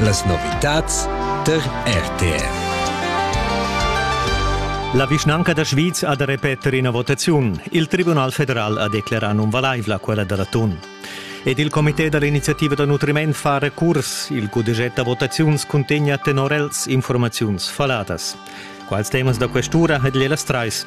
Las novitads tar RTR. La vischnanca da Schwyz ha da repeter ina votaziun. Il Tribunal federal ha declerà nunvalaivla quella da l'atun. Ed il comité da l'iniziativa da nutriment fa recurs. Il cudeget da votaziuns cuntegna tenor els informaziuns faladas. Quals temas da questura ha Gliela Streis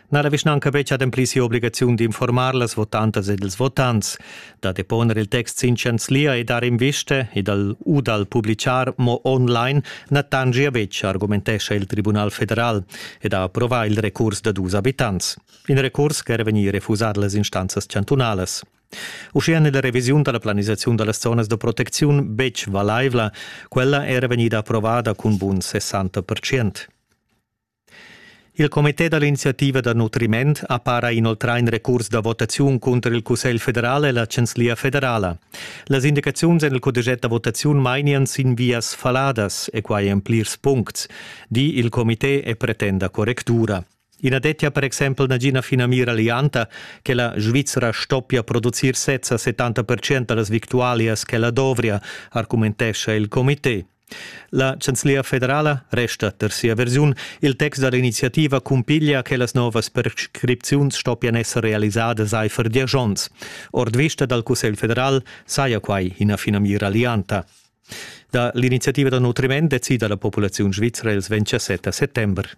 na la vischnanca betg ademplì sia obligaziun d'informar las votantas ed ils votants, da deponer il text sin chanzlia e dar invista e dal u dal publichar mo online na tangia betg, argumentescha il Tribunal federal ed ha approvà il recurs da dus abitants. In recurs ch'era vegnì refusà da las instanzas chantunalas. Uschia n'è la revisiun da la planisaziun da las zonas da protecziun betg valaivla, quella era vegnida approvada cun bun 60%. Il comité da l'iniziativa da nutriment ha para inoltrà in recurs da votaziun cunter il Cussegl federal e la Chanzlia federala. Las indicaziuns en il codiget da votaziun mainian sin vias faladas e quai en plirs puncts, di il comité e pretenda correctura. I na dettia per exempel nagina finamira lianta che la Svizra stoppia producir sezza 70% da las victualias che la dovria, argumentescha il comité. La chanzlia federala resta per sia versiun. Il text da l'iniziativa cumpiglia che las novas prescripziuns stoppian esser realisadas aifer diesch onns. Ord vista dal Cussegl federal saja quai ina finamira lianta. Da l'iniziativa da nutriment decida la populaziun svizra ils 27 settember.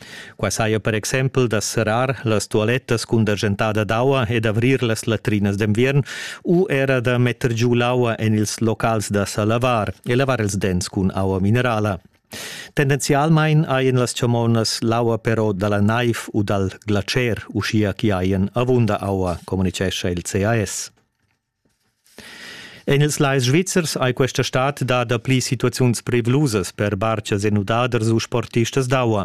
Qua saja per exempel da serrar las tualettas cun degentada d'aua e d'avrir las latrinas d'enviern u era da metter giu l'aua en ils locals da sa lavar e lavar ils dents cun aua minerala. Tendenzialmein haien las chamonas l'aua però dalla naiv u dal glacer, uschia chi haien avunda aua, communicescha il CAS. En ils lais svizzers ei questa stad da dapli situaziuns privlusas per bartgas e nudaders u sportistas d'aua.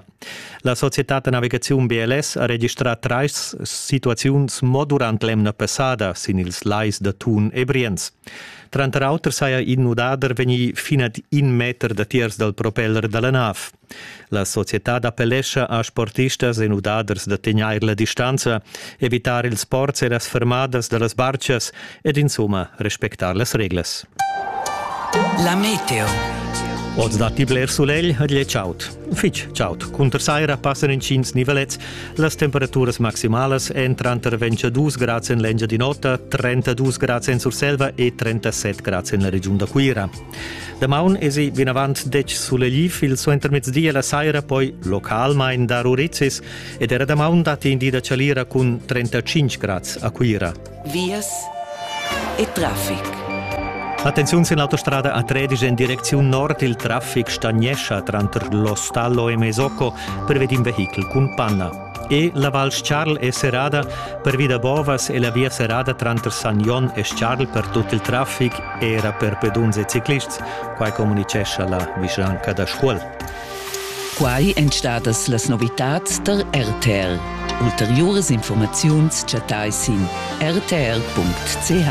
La societad da navigaziun BLS ha registrà trais situaziuns mo durant l'emna passada sin ils lais da Thun e Brienz. Tranter auter saja in nudader vegnì fin ad in meter datiers dal propeller da la nav. La societad appellescha a sportistas e nudaders da tegnair la distanza, evitar ils sports e las fermadas da las barchas ed insumma respectar las reglas. La meteo. Oz datti bler sulegl ed è chaud. Fitg chaud. Cunter saira passan intgins nivelets. Las temperaturas maximalas èn tranter 22 grads en l'Engia di Notta, 32 grads en Surselva e 37 grads en la regiun da Cuira. Damaun esi vinavant detg sulegl il suentermezdi e la saira poi localmain dar urizzis ed era damaun datti in di da chalira cun 35 grads a Cuira. Vias e traffic. Attenziun sin l'autostrada a Tredisch en direcziun nord. Il traffic stagnescha tranter l'Ostallo e Mesocco per vedind vehichel cun panna. E la val Scharl è serrada pervi da bovas e la via serrada tranter San Jon e Scharl per tut il traffic era per peduns e ciclists, quai communicescha la vischnanca da Scuol. Quai èn stadas las novitads tar RTL. Ulteriuras informaziuns chattai sin rtl.ch.